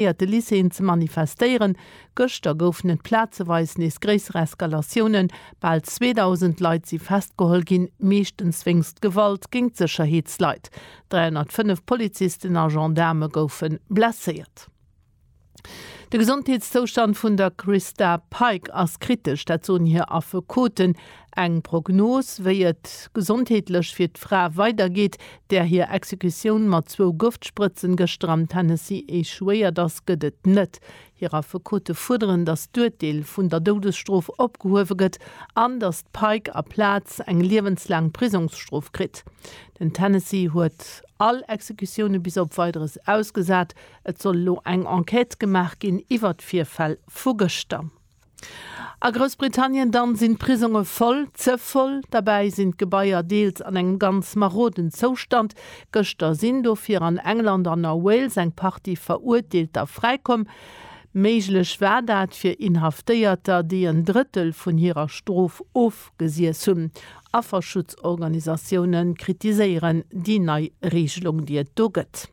iert de Lycéeën ze manifestéieren. Gëschter goufen et plazeweis nees gréisser Eskalatiounen. Bal 2.000 Leit si festgeholl ginn, meeschtens wéinst Gewalt géint Sécherheetsleit. 305 Polizisten a Gendaarme goufe blesséiert. De Gesondheetszoustand vun der Christa Pike ass kritesch, dat soen hir Affekoten. Eng Prognos, wéi et gesondheetlech fir d'Fra weidergeet, där hir Exekutioun mat zwou Gëftsprëtzen gëschter am Tennessee echouéiert ass, gëtt et net. Hir Affekote fuerderen, datt d'Urteel vun der Doudesstrof opgehuewe gëtt an datt d'Pike aplaz eng liewenslaang Prisongsstrof kritt. Den Tennessee huet all Exekutioune bis op Weideres ausgesat. Et soll elo eng Enquête gemaach ginn iwwer d'Virfäll vu gëschter. A Groussbritannien dann sinn d'Prisonge voll, ze voll. Derbäi sinn d'Gebaier deels an engem ganz maroden Zoustand. Gëschter sinn dofir an England an a Wales eng Partie Verurteelter fräikomm. Méiglech war dat fir Inhaftéierter, déi en Drëttel vun hirer Strof ofgesiess hunn. Afferschutzorganisatioune kritiséieren déi nei Reegelung, déi et do gëtt.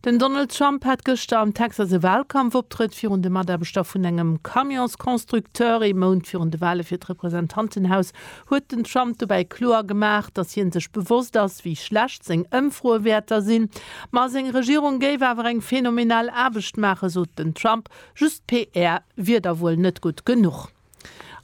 Den Donald Trump hat gëschter am Texas e Wahlkampfoptrëtt virun de Mataarbechter vun engem Camionsconstructeur. Ee Mount virun de Wahle fir d'Representantenhaus huet den Trump dobäi kloer gemaach, datt hie sech bewosst ass, wéi schlecht seng Ëmfroewäerter sinn. Ma seng Regierung géif awer eng phänomenal Aarbecht maachen, sot den Trump. Just PR wier da wuel net gutt genuch.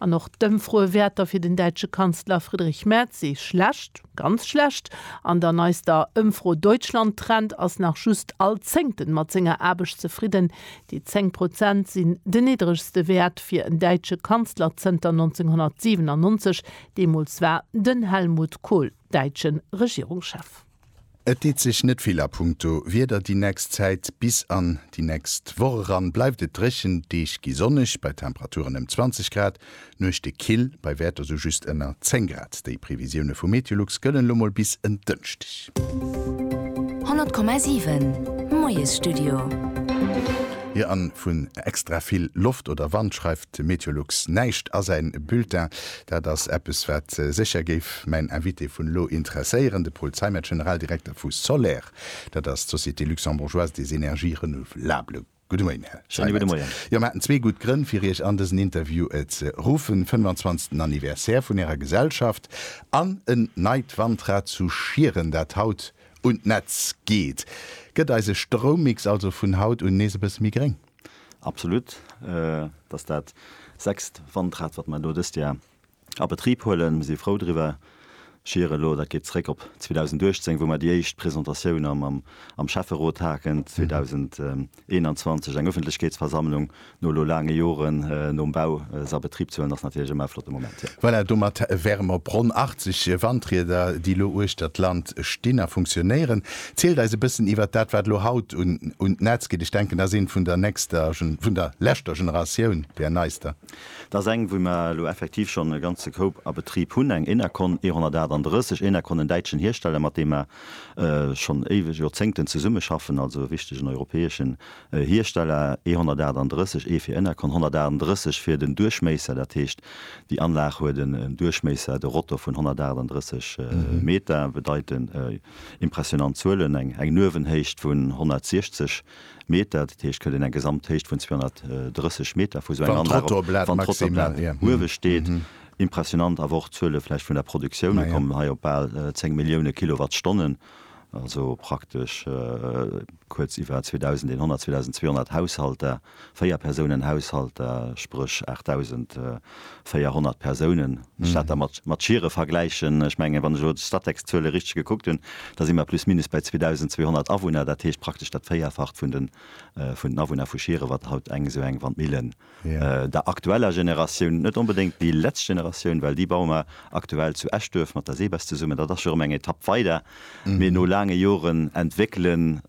An och d'Ëmfroe Wäerter fir den däitsche Kanzler Friedrich Merz si schlecht, ganz schlecht. An der neister Ëmfro Deutschland Trend ass nach just all Zéngten mat senger Aarbecht zefridden. Déi 10 Prozent sinn den niddregste Wäert fir en däitsche Kanzler zënter 1997. Deemools war den Helmut Kohl däitschen Regierungschef. Et deet sech net vill a punkto Wieder déi nächst Zäit. Bis an déi nächst Woch eran bleift et dréchen, d'Deeg gi sonneg bei Temperaturen ëm 20 Grad, d'Nuechte kill bei Wäerter sou just ënner 10 Grad. Déi Previsioune vu Meteolux gëllen elo mol bis en Dënschdeg. 100,7 Moiesstudio. Jo, an vun extra vill Loft oder Wand schreift Meteolux näischt a säi Bulletin. Dat ass eppes, wat sécher géif mäin Invité vun elo interesséieren, de Paul Zeimet, Generaldirekter vu Soler. Dat ass d'Société luxembourgeoise des énergies renouvelables. Gudde Moien, Här Zeimet. Schéine gudde Moien. Jo, mir haten zwee gutt Grënn, fir Iech an dësen Interview ze ruffen, 25. Anniversaire vun Ärer Gesellschaft an en neit Wandrad zu Schieren, dat haut un d'Netz geet. Gëtt eise Stroummix also vun haut un nees e bësse méi gréng? Absolut, et ass dat sechst Wandrad, wat mer elo dëst Joer a Betrib huelen. Mir si frou driwwer. Schier elo, dat geet zréck op 2018, wou mer déi éischt Presentatioun am Schäfferot haten, 2021 eng Ëffentlechkeetsversammlung, no elo laange Joren nom Bau se a Betrib ze huelen, ass natierlech ëmmer e flotte Moment. Voilà, domat wäre mer op ronn 80 Wandrieder, déi elo uechter d'Land stinn a funktionéieren. Zielt eis e bëssen iwwert dat wat elo haut un d'Netz geet. Ech denken dat ass een vun der nächster, vun der leschter Generatioun, där neister. Dat ass eng wou mer elo effektiv schonn e ganze Koup a Betrib hunn, eng Enercon E 138, Enercon en däitschen Hiersteller mat deem mer schonn éiweg, Joerzéngten zesumme schaffen, also e wichtegen europäeschen Hiersteller E 138, ee fir Enercon, 138 fir den Duerchméisser, dat heescht déi Anlag huet en Duerchméisser, de Rotor vun 138 Meter, bedeit en. Impressionant Zuelen, eng eng Nuewenhéicht vun 160 Meter, dat heescht huet een eng Gesamthéicht vun 230 Meter vu sou enger Anlag op, wann d'Trottoirplate uewe steet. Impressionant awer och d'Zuele vläicht vun der Produktioun, mir kommen hei op bal 10 Millioune Kilowattstonnen, also praktesch kuerz iwwer 2100, 2200 Haushalter. Véierpersounen-Haushalter, spréch 8.400 Persounen, wann ech dat da mat Chiere vergläichen. Ech mengen, wann ech elo d'Statec-Zuele richteg gekuckt hunn, da si mer plus minus bäi 2.200 Awunner, dat heescht praktesch dat Véierfacht vun den Awunner vu Schiere, wat haut eng esou eng Wandmille der aktueller Generatioun, net onbedéngt déi letzt Generatioun, well déi baue mer aktuell zu Eschduerf mat der SEBES zesummen, dat ass jo erëm eng Etapp weider, mee no laange Joren entwéckelen,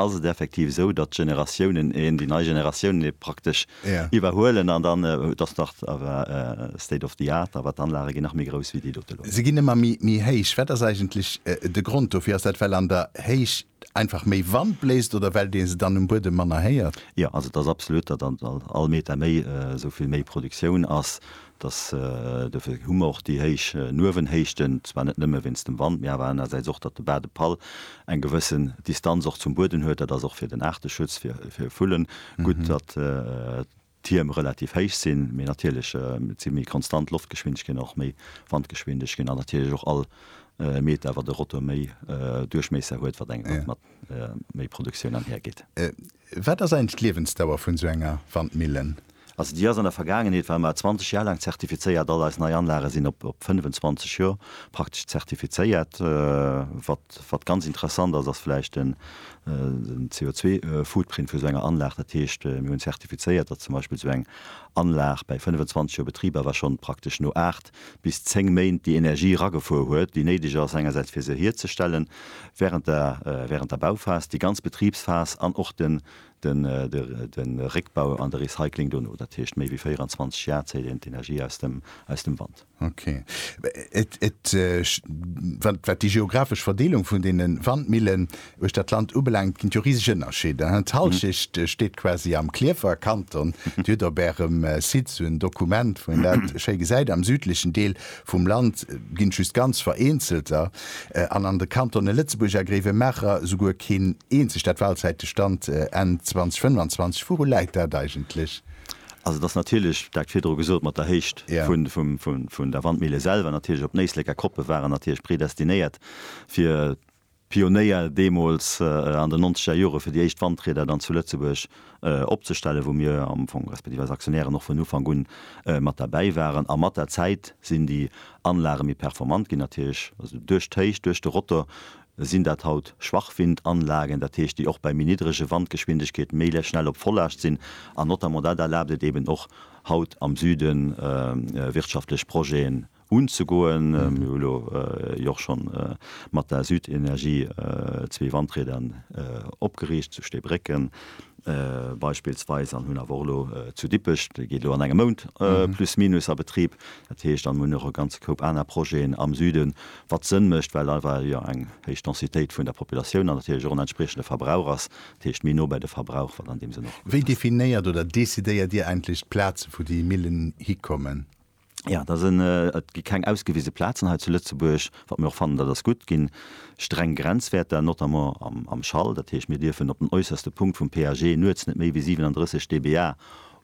Ass et effektiv esou, datt d'Generatiounen een, déi nei Generatiounen ee praktesch iwwerhuelen an dann, et ass nach awer state of the art, awer d'Anlage ginn nach méi grouss wéi déi dote elo? Se ginn ëmmer méi héich. Wat ass eigentlech de Grond dofir? Ass dat, well an der Héicht einfach méi Wand bléist oder well dee se dann um Buedem manner héiert? Jo, also et ass absolut, datt all Meter méi esou vill méi Produktioun ass. Dass, dofir hu mer och déi héich Nuewenhéichten, zwar net nëmme wéinst dem Wand, mee awer anerersäits och, datt de Bas de Pal eng gewëssen Distanz och zum Bueden huet. Dat ass och fir den Aarteschutz, fir Vullen gutt, datt d'Tierm relativ héich sinn. Mee natierlech, et si méi konstant Loftgeschwindegkeeten an och méi Wandgeschwindegkeeten an natierlech och all Meter, wat e Rotor méi Duerchmiesser huet, wat eng mat. méi Produktioun anhir geet. Wat ass eigentlech d'Liewensdauer vun esou enger Wandmillen? Also déi ass an der Vergaangenheet war mar 20 Jar laang zertifizéiert. All eis nei Anlage sinn op 25 Jor praktesch zertifizéiert. Wat ganz interessant ass, ass vläicht den CO2 Footprint vu esou enger Anlag. Dat heescht mir hunn zertifizéiert, datt zum Beispill esou eng Anlag bäi 25 Jor Betrib awer schonn praktesch no 8 bis zéng Méint déi Energie eragefuer huet, déi néideg ass, engersäits fir se hierzestellen während der während der Bauphas, déi ganz Betribsphas an och den den den Réckbau an de Recycling dono, dat heescht méi wéi 24 Jar zéiht een d'Energie aus dem aus dem Wand. Ok. Et et wat wat déi geographesch Verdeelung vun deene Wandmillen Uecht dat Land ubelaangt ginn et jo riseg Ënnerscheeder, hein? D'Hallschecht steet quasi am Klierfer Kanton. Dir hutt op ärem Site esou en Dokument, wou een dat schéi gesäit. Am südlechen Deel vum Land ginn et just ganz vereenzelter an an de Kantone Lëtzebuerg a Gréiwemaacher esouguer keen eenzegt. Dat Walzäite Stand Enn 2025, wouru läit dat eigentlech? Also et ass natierlech, dat virdru gesot, mat der Héicht vun der Wandmille selwer natierlech. Op Néisléck a Koppe waren natierlech predestinéiert fir Pionéier deemools an den nonzeger Jore fir déi éischt Wandrieder dann zu Lëtzebuerg opzestellen, wou mir am Fong, respektiv eis Aktionären, och vun Ufank un mat derbäi waren. A mat der Zäit sinn déi Anlage méi performant ginn, dat heesch also duerch d'Héicht, duerch de Rotor sinn dat haut Schwachwindanlagen, dat heesch déi och bei méi niddrege Wandgeschwindegkeeten méi schnell op Vollaascht sinn. An notamment dat erlaabt et eeben och haut am Süden wirtschaftlech Projeten unzegoen. Mir hu lo jo och schonn mat der Südenergie zwee Wandrieder opgeriicht zu Steebrécken beispillsweis an hunn awer och elo zu Dippech, dee geet elo an engem Mount plus minus a Betrib. Dat heescht, an mir hunn och e ganze Koup aner Projeten am Süden, wat Sënn mécht, well einfach jo eng héich Densitéit vun der Populatioun an natierlech och en entspriechende Verbrauch ass, dat heescht méi no bei de Verbrauch, wat an deem Sënn och gutt ass. Wéi definéiert oder decidéiert Dir eigentlech d'Plaze wou déi Millen hikommen? Jo, da sinn, et gi keng ausgewise Plazen hei zu Lëtzebuerg, wat mir och fannen, dat ass gutt, ginn streng Grenzwäerter, notamment am Schall. Dat heescht, mir dierfen op den äusserste Punkt vum PAG nuets net méi wéi 37 dBA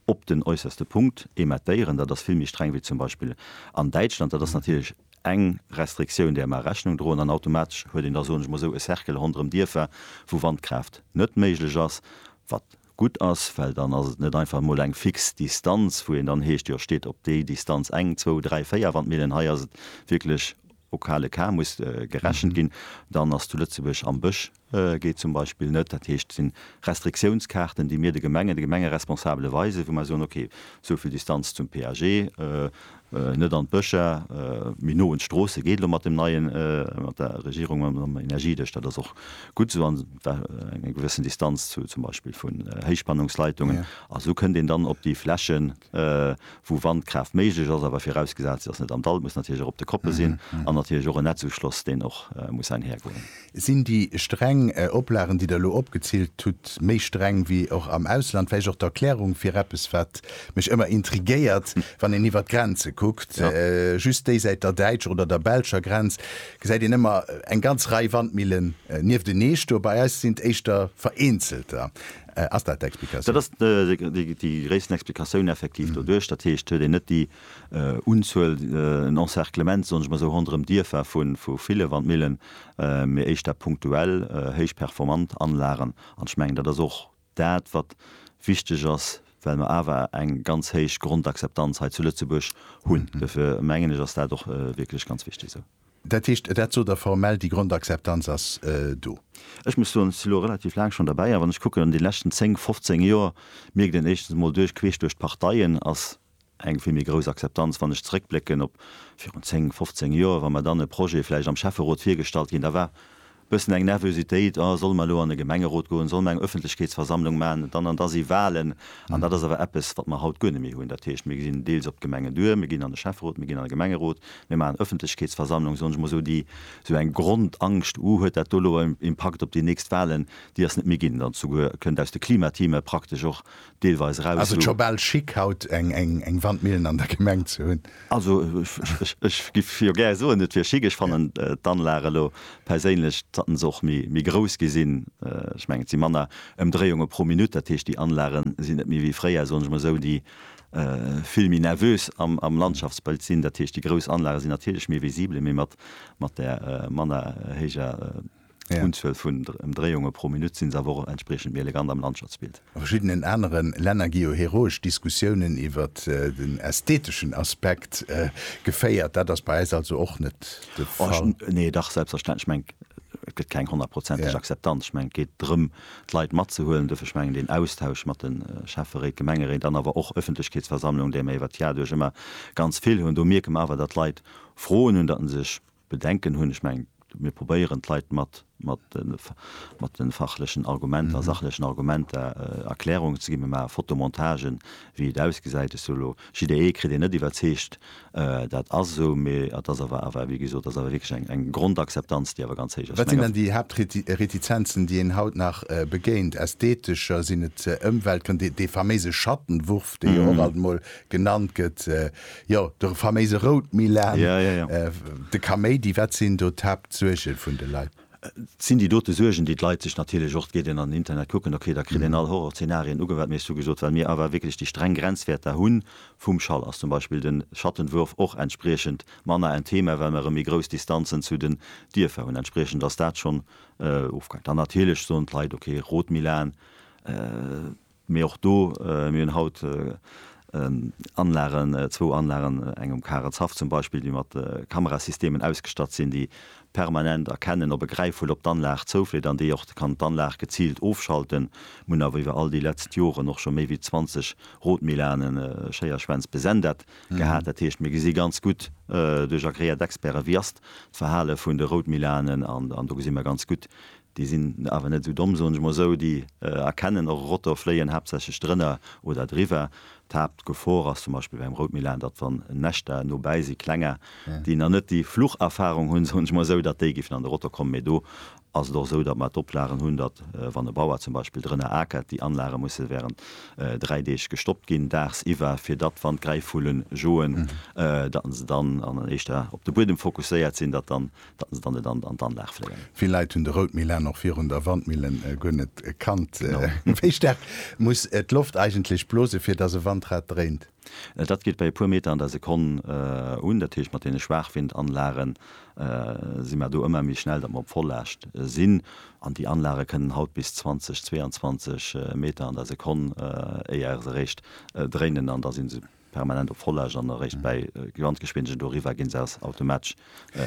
op den äusserste Punkt emettéieren. Dat ass vill méi streng wéi zum Beispill an Däitschland. Dat ass natierlech eng Restriktioun, där mer Rechnung droen. An automatesch huet een da, soen ech mol esou, e Cercle ronderëm Dierfer, wou Wandkraaft net méiglech ass, wat, gutt ass, well dann ass et net einfach emol eng fix Distanz, wou een dann heescht, jo steet op déi Distanz eng, zwou, dräi, véier Wandmillen, hei ass et wierklech au cas le cas, muss gerechent ginn. Dann ass zu Lëtzebuerg am Bësch geet zum Beispill net. Dat heescht, et sinn Restriktiounskaarten, déi mir de Gemengen, de Gemengeresponsabele weisen, wou mer soen, okay, esou vill Distanz zum PAG, Net an d'Bëscher, mee no un d'Stroosse geet elo mat dem neien, mat der Regierung, mam Energiedesch. Dat ass och gutt esou. An et war eng gewëssen Distanz zu zum Beispill vun Héichspannungsleitungen. A esou kënnt een dann op déi Flächen, wou Wandkraaft méiglech ass, awer virausgesat, se ass net am Dall, et muss natierlech och op de Koppe sinn, an natierlech och en Netzuschloss, deen och muss einhergoen. Sinn déi streng Oplagen, déi Der elo opgezillt hutt, méi streng wéi och am Ausland? Vläicht och d'Erklärung fir eppes, wat mech ëmmer intriguéiert, wann een iwwert d'Grenze kuckt, just déisäit der däitscher oder der belscher Grenz gesäit een ëmmer eng ganz Rei Wandmillen nieftenee stoe, bei eis sinn et éischter vereenzelter. Ass dat d'Explikatioun? Dat ass déi gréissten Explikatioun effektiv doduerch. Dat heescht, huet een net déi Unzuel, en Encerclement, soen ech mol esou, ronderëm Dierfer vu ville Wandmillen, mee éischter punktuell héich performant Anlagen. An ech mengen, dat ass och dat, wat wichteg ass, well mer awer eng ganz héich Grondakzeptanz hei zu Lëtzebuerg hunn. Dofir mengen ech, ass dat och wierklech ganz wichteg esou. Dat heescht, dat sot Der formell, déi Grondakzeptanz ass do? Ech muss soen, ech si elo relativ laang schonn derbäi, a wann ech kucken an de leschten zéng, fofzéng Joer, mierkt een éischtens emol duerch queesch duerch d'Parteien, ass eng vill méi grouss Akzeptanz, wann ech zeréckblécken op virun 10, 15 Joer, wa mer dann e Projet vläicht am Schäfferot virgestallt ginn, da war e bëssen eng Nervösitéit, oh solle mer elo an e Gemengerot goen, solle mer eng Öffentlechkeetsversammlung maachen dann, an da si Wahlen. An dat ass awer eppes, wat mer haut guer net méi hunn. Dat heescht, mir gesinn deels op d'Gemengen duer, mir ginn an de Schäfferot, mir ginn an de Gemengerot, mir maachen Öffentlechkeetsversammlung, soen ech mol esou, déi esou eng Grondangscht, uh huet dat do elo en Impakt op déi nächst Wahlen, déi ass net méi ginn. Dann zu guer kënnt aus de Klimateame praktesch och deelweis eraus. Ass et scho bal chic haut eng Wandmillen an der Gemeng ze hunn? Also ech giff jo gär soen et wier chic. Ech fannen d'Anlag elo perséinlech, dat haten se och méi grouss gi sinn, ech mengen et si manner Ëmdréiunge pro Minutt, dat heescht déi Anlage sinn net méi wéi fréier, soen ech mol esou, déi vill méi nervös am Landschaftsbëld sinn. Dat heescht déi grouss Anlage sinn natierlech méi visibel, mee mat där manner héijer. Unzuel vun Ëmdréiunge pro Minutt si se awer och entspriechend méi elegant am Landschaftsbild. A verschiddenen anere Länner gi jo heroesch Diskussiounen iwwer den ästheteschen Aspekt geféiert. Dat ass bei eis also och net de Fall. Nee, dach, selbstverständlech. Ech mengen, et gëtt keng honnertprozenteg Akzeptanz. Ech mengen, et geet drëm, d'Leit matzehuelen. Duerfir, ech mengen, deen Austausch mat de Schäfferéit, Gemengeréit an awer och Ëffentlechkeetsversammlungen, déi mer iwwert d'Jahre duerch ëmmer ganz vill hunn, do mierke mer awer, datt d'Leit Froen hunn, datt en sech Bedenken hunn, ech mengen, mir probéieren d'Leit mat de fachlechen Argumenter a sachlechen Argumenter Erklärungen ze ginn. Mir maache Fotomontagen, wéi et ausgesäit. Ech soe elo, jidderee kritt een net iwwerzeegt, dat ass esou, mee et ass awer, awer wéi gesot, et ass awer wierklech eng Grondakzeptanz, déi awer ganz héich ass. Wat sinn dann déi Haaptretizenzen, déi een haut nach begéint? Ästhetescher? Sinn et Ëmweltgrënn, dee faméise Schattenwurf, dee jo och alt emol genannt gëtt? Jo, de faméise Routmilan, de Kaméidi, wat sinn do d'Haaptsuerge vun de Leit? Et sinn déi dote Suergen, déi d'Leit sech natierlech och, et geet een an den Internet kucken, okay, da kritt een all Horrorzeenarien ugewat. Mee ech hu gesot, well mir awer wierklech déi streng Grenzwäert da hunn, vum Schall ass zum Beispill de Schattenwurf och entspriechend manner en Thema, well mer erëm méi grouss Distanzen zu den Dierfer hunn. Entspriechend ass dat schonn ofgaangen. Dann natierlech soen d'Leit, okay, Routmilan. Mee och do, mir hunn haut Anlagen, zwou Anlagen, eng um Karenzhaff zum Beispill, déi mat Kamerasystemen ausgestatt sinn, déi permanent erkennen, ob e Gräifvull op d'Anlag zoufleet an déi och kann d'Anlag geziilt ofschalten. Mir hunn awer iwwer all déi letzt Joren och scho méi wéi 20 Rotmilane, Schéierschwänz, besendet gehat. Dat heescht, mir gesi ganz gutt duerch agreéiert Experten, wéi ass d'Verhale vun de Routmilanen an do gesi mer ganz gutt, Déi sinn awer net esou domm, soen ech mol esou, déi erkennen och e Rotor fléien, haaptsächlech drënner oder driwwer. D'Haaptgefor ass zum Beispill beim Routmillen, datt wann Näschter nobäi si, klenger, déi nach net déi Flucherfarung hunn, soen ech mol esou, datt déi géifen an de Rotor kommen. Mee do ass et och esou, datt mer d'Oplagen hunn, datt wann e Bauer zum Beispill drënner akert, déi Anlage musse während dräi Deeg gestoppt ginn, daagsiwwer, fir datt wann d'Gräifvullen joen, datt se dann an éischter op de Buedem fokusséiert sinn, datt dann datt se dann net an d'Anlag fléien. Vill Leit hunn de Routmilan och virun der Wandmille guer net kannt. Wéi staark muss d'Loft eigentlech blose fir datt e Wandrad dréint? Dat geet bei e puer Meter an der Sekonn un. Dat heescht mat deene Schwaachwindanlagen si mer do ëmmer méi schnell, datt mer op Vollaascht sinn. An déi Anlage kënnen haut bis 20, 22 Meter an der Sekonn, éier se eréischt dréinen an da si se. permanent op Vollaasch an eréischt bäi Gesamtgeschwindegen doriwwer ginn se aus automatesch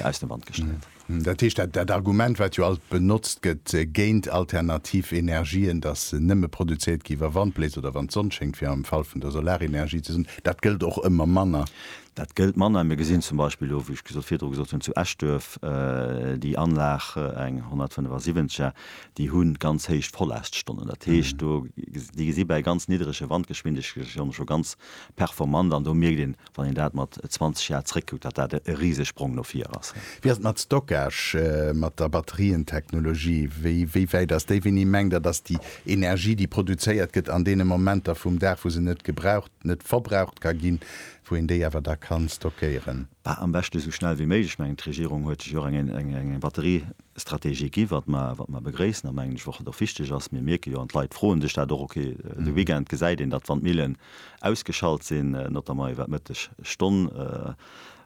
aus dem Wand gestellt. Dat heescht, dat dat Argument, wat jo alt benotzt gëtt géint alternativ Energien, dass se nëmme produzéiert gi wa Wand bléist oder wann d'Sonn schéngt, fir am Fall vun der Solarenergie ze soen, dat gëllt och ëmmer manner. Dat gëllt manner. Mir gesinn zum Beispill elo, wéi ech virdru gesot hunn, zu Eschduerf déi Anlag, eng 175er, déi hu ganz héich Vollaststonnen, dat heescht do déi gesi bäi ganz niddrege Wandgeschwindegkeeten scho ganz performant an do mierkt een, wann een dat mat 20 Jar zréckkuckt, datt dat e Risesprong no vir ass. Wéi ass et mat Stockage, mat der Batterientechnologie? Wéi wéi wäit ass déi? Wéini mengt Der, datt déi Energie, déi produzéiert gëtt an deene Momenter vum Dag, wou se net gebraucht, net verbraucht ka ginn, wou een déi awer da kann stockéieren? Bah, am beschte sou schnell wéi méiglech. Ech mengen, d'Regierung huet sech jo och eng eng eng Batterie Strategie ginn, wat mer begréissen a mengen ech och, wat och wichteg ass. Mir mierke jo, an d'Leit froen sech dat och, ok, de Weekend gesäit een, datt d'Wandmillen ausgeschalt sinn, notamment iwwer d'Mëtteg Stonn.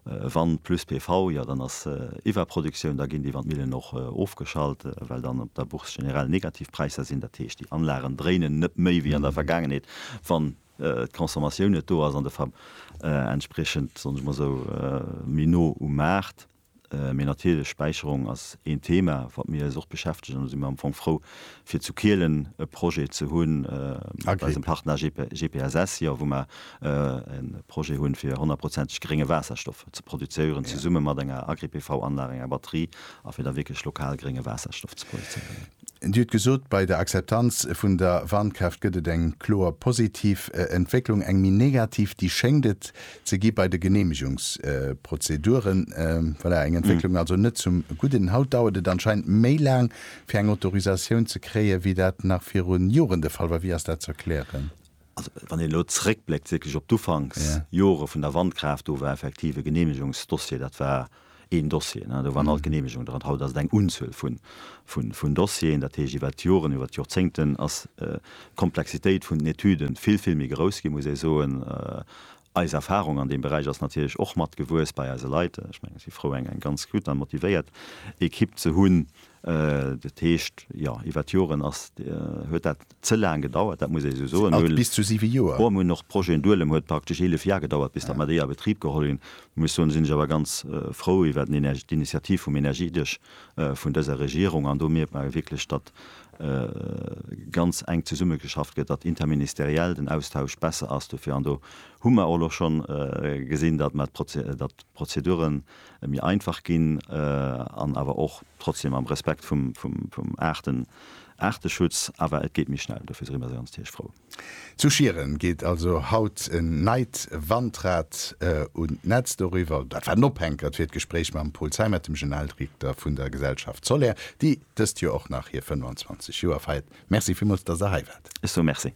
Wand plus PV, jo dann ass Iwwerproduktioun, da ginn déi Wandmillen och ofgeschalt, well dann op der Bourse generell Negativpräisser sinn. Dat heescht, déi Anlagen dréinen net méi wéi an der Vergaangenheet, wann d'Consommatioun net do ass an de Ver, entspriechend, soen ech mol esou, méi no um Maart. Mee natierlech, Späicherung ass een Thema, wat mir eis och beschäftegen. Do si mir am Fong frou, fir zu Kielen e Projet ze hunn mat eisem Partner GPSS, jo, wou mer e Projet hunn, fir honnertprozenteg grénge Waasserstoff ze produzéieren, zesumme mat enger Agri-PV-Anlag, enger Batterie, a fir da wierklech lokal grénge Waasserstoff ze produzéieren. Dir hutt gesot, bei der Akzeptanz vun der Wandkraaft gëtt et eng kloer positiv Entwécklung, eng méi negativ, déi schéngt et ze gi bei de Geneemegungsprozeduren. Voilà, eng Entwécklung also net zum Gudden. Haut dauert et anscheinend méi laang, fir eng Autorisatioun ze kréien, wéi dat nach virun Joren de Fall war. Wéi ass dat ze erklären? Also, wann een elo zréckbléckt wierklech op d'Ufanksjore vun der Wandkraaft, do war effektiv e Genehmegungsdossier, dat war een Dossier, do waren alt Genehmegungen dran. Haut ass et eng Unzuel vun Dossieren. Dat heescht, iwwer d'Joren, iwwer d'Jorzéngten ass d'Komplexitéit vun den Etüde vill, vill méi grouss ginn, muss ee soen. Eis Erfahrung an deem Beräich ass natierlech och mat gewuess bei eise Leit. Ech mengen, ech si frou eng ganz gutt an motivéiert Equipe ze hunn. Dat heescht, jo, iwwert Joren ass, huet dat ze laang gedauert, dat muss ee esou soen. Alt bis zu 7 Joer. Bon, mir hunn och Projeten duelem, huet praktesch 11 Jar gedauert bis datt mer déi a Betrib geholl hunn. Muss soen, sinn ech awer ganz frou iwwert d'Initiativ vum Energiedesch vun dëser Regierung an do mierkt mer wierklech, datt ganz enk zesummegeschafft gëtt, datt interministeriell den Austausch besser ass dofir. An do hu mer och elo scho gesinn, datt mer, datt d'Prozedure méi einfach ginn an awer och trotzdem am Respekt vum Aarteschutz, awer et geet méi schnell. Dofir si mer ganz tierchfrou. Zu Schieren geet also haut en neit Wandrad un d'Netz. Doriwwer, dat war den Ophänkert fir d'Gespréich mam Paul Zeimet, dem Generaldirekter vun der Gesellschaft Soler, déi dëst Joer och nach hir 25 Joer feiert. Merci villmools, dass Der hei waart. Ech soe Merci.